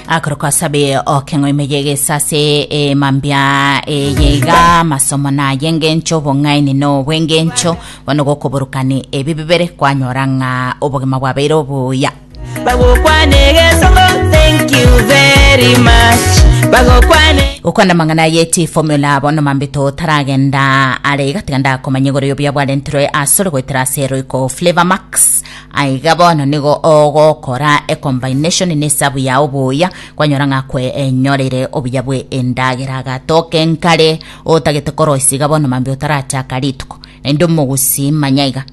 akoroko asabe okeng'o emeyege sase emambia eyeiga masomo naye engencho obong'aini no obwengencho bono gokoborokani ebi bibere kwanyora ng'a obogima bwabeire obuya bagokwana egesongo thank you very much bagokwana gokwana amang'ana yeti formula bono mambito otaragenda are iga tiga ndakomanya igoro y'obuya bwarenterwe asore goetera ase roiko flavor max Aiga bono nigo ogokora ecombination na esabu yao buya kwanyora ng'a kwenyorire obuya bwe endagera agatoka enkare otagete koroisia iga bono mambia otarachaka rituko naende omogusi manya iga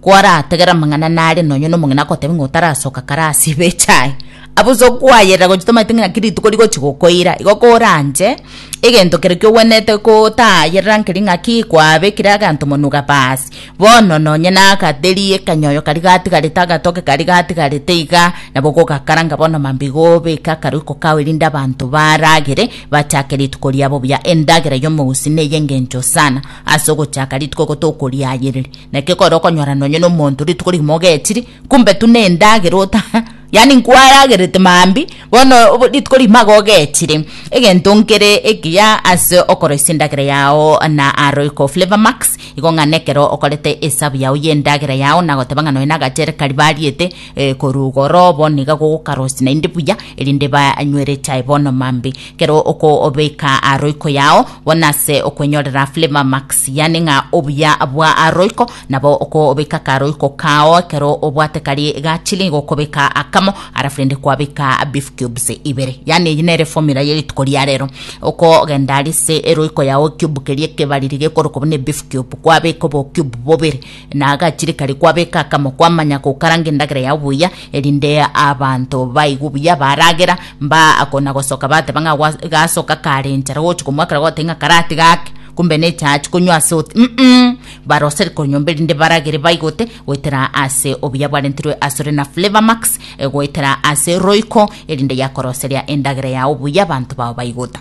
kwarategera amang'ana nare nonye na omong'ina akotebi ng'a otarasoka kare ase ibe echae abuso kwayerera gochia tomaeti ng'a naki rituko rigochi gokoira igo koranche egento kere kiogwenerete kotayerera nkeri ng'aki kwabekire aganto monwe iga baasi. Bono nonye nagateria ekanyoyo karia gatigarete agatoke karia gatigarete iga, nabo gogakaranga bono mambia gobeke akaroiko kao erinde abanto baragere, bachake rituko riabo buya, endagera y'omousi na ey'engencho sana, ase ogochaka rituko gotokoria ayereri. Naki ekero okonyora nonye nomonto rituko rigima ogechiri, Kumbe tuna endagera ota yaani nkwaragerete maambia bono obo- rituko rimaga ogechire egento nkere ekiya ase okoroisia endagera yao na aroiko flavour max igo ng'a nekero okorete esabu yao y'endagera yao nagoteba ng'a nonya na agachere karia bariete eh, korwa igoro bono iga gogokarosia naende buya erinde banywere echae bono maambia ekero okobeka aroiko yao bono ase okwenyorera flavour max yaani ng'a obuya bwa aroiko Nabo okobeka karoiko kao ekero obwate karie egachi nigo okobeka akamo alafu rende kwabeka beef cubes ibere. Yaani eyio nere formula ya rituko ria rero. Okogenda arise eroiko yao ecube keria ekebariri gekorokwa buna ebeef cube kwabeka obo cube bobere na agachire karia kwabeka akamo kwamanya gokaranga endagera yao buya erinde abanto baigwe buya baragera mba kona gosoka bateba ng'a gwa gasoka kare enchara gochi komwakera goteba ng'a karatiga ake kumbe nechachi konywa ase oti mm Baroseri konyomba erinde baragere baigote goetera ase obuya bwarentirwe asore na Flavourmax egoetera ase roiko erinde yakoroseria endagera yao buya abanto bao baigota.